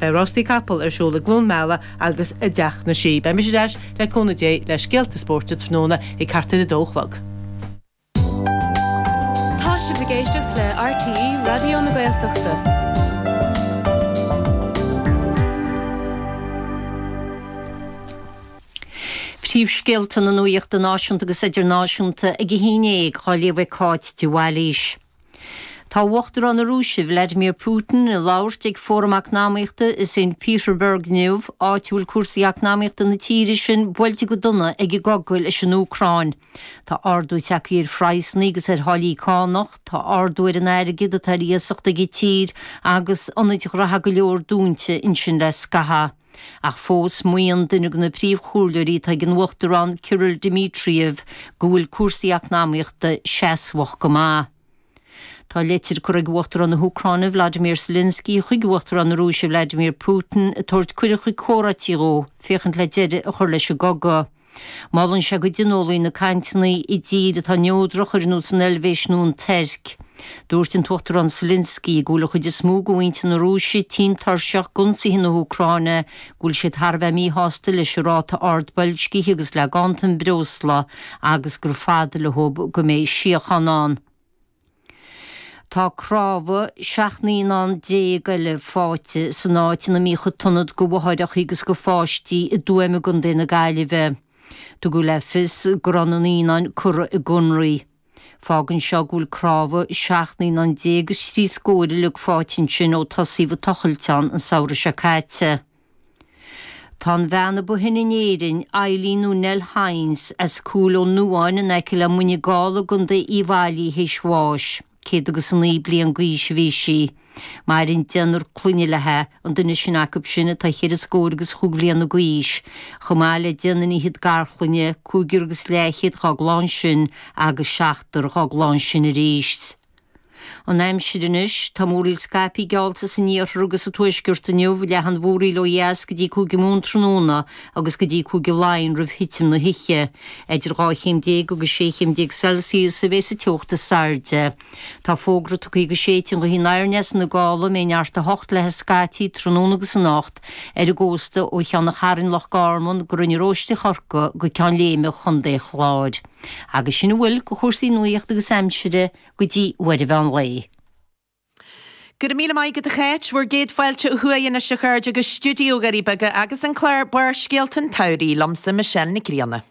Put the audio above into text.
Beidh rástaí capall ar siúl i gCluain Meala agus i dTeach na Sí. Beidh mise ar ais, le cúnamh Dé, le scéalta spóirt an tráthnóna ag thart ar a dó a chlog. Tá sibh ag éisteacht le RTÉ Raidió na Gaeltachta. Príomhscéalta na nuachta náisiúnta agus idirnáisiúnta ag a 11 á léamh ag Cáit de Bhailís. Tá Uachtarán na Rúise, Vladimir Putin, ag labhairt ag Fóram Eacnamaíochta i St Peterburg inniu, áit a bhfuil cúrsaí eacnamaíochta na tíre sin buailte go dona ag an gcogadh leis an Úcráin. Tá ardú tagthaí ar phraghsanna agus ar tháillí cánach, tá ardú ar an airgead atá ar iasacht ag an tír agus ionaid ghnaithe go leor dúnta ansin le scaitheamh. Ach fós, maíonn duine de na príomhchomhairleoirí atá ag an Uachtarán Kirill Dmitriev go bhfuil cúrsaí eacnamaíochta seasmhach go maith. Tá leitir curtha ag Uachtarán na hÚcráine Vladimir Zelensky chuig Uachtarán na Rúise Vladimir Putin ag tabhairt cuireadh chuig comhráití dhó féachaint le deireadh a chur leis an gcogadh. Molann sé go dtionólfaí na cainteanna i dtír atá neodrach, ar nós an Eilvéis nó an Tuirc. Dúirt an tUachtarán Selinsky go bhfuil an chuid is mó de mhuintir na Rúise tinn tuirseach d'ionsaithe na hÚcráine, go bhfuil siad thar a bheith míshásta leis an ráta ard boilscithe agus le ganntan breosla agus gur fada leob go mbeidh síocháin ann. Tá cnámha 17 naíonán eile faighte san áit ina mbíodh an t-ionad do mháithreacha agus do pháistí i dTuaim i gContae na Gaillimhe. Tugadh le fios go raibh na naíonáin curtha i gconraí. Fágann seo go bhfuil cnámha 17 naíonán is trí scór uilig faighte ansin ó tosaíodh ag tochailt ann an samhradh seo caite. Tá an bhean a ba shine in Éirinn, Eileen nó Nell Hynes, as Cúil Ó Nuáin in aice le Muine Gall i gContae Uíbh Fhailí théis bháis. Céad agus a naoi bliain d'aois a bhí sí. Maireann deichniúr clainne léithi, an duine is sine acu sin atá cheithre scór agus chúig bhliana gaois, chomh maith le deichniúr is fiche garchlainne, cúigear agus leathchéad dhá gclann sin agus seachtar dhá gclann sin aríst. An aimsir anois, tá múraíl scaipthe geallta san iarthar agus sa tuaisceart inniu, leathfaidh an mhúraíl ó dheas go dtí Cúige Mumhan tráthnóna agus go dtí Cúige Laighean roimh thitim na hoíche. Idir 12 chéim agus 16 chéim Celsius a bheidh sa teocht is airde. Tá fógra tugtha go séidfidh an ghaoth aniar aneas ina gála a mbeidh neart a hocht léithi scaití tráthnóna agus anocht, ar an gcósta ó Cheann an Chairn, Loch Garman, go Rinn an Róistigh, Corcaigh go Ceann Léime Chontae an Chláir. agus sin a bhfuil de chúrsaí nuaíochta agus aimsire go dtí uair an mheán lae. Go raibh míle maith agat a Cháit, bhur gcéad fáilte ó thuaidh anois a chairde go Stiúideo na nDoirí Beaga agus an clár Barrscéalta an tSamhraidh liomsa, Michelle Nic Grianna.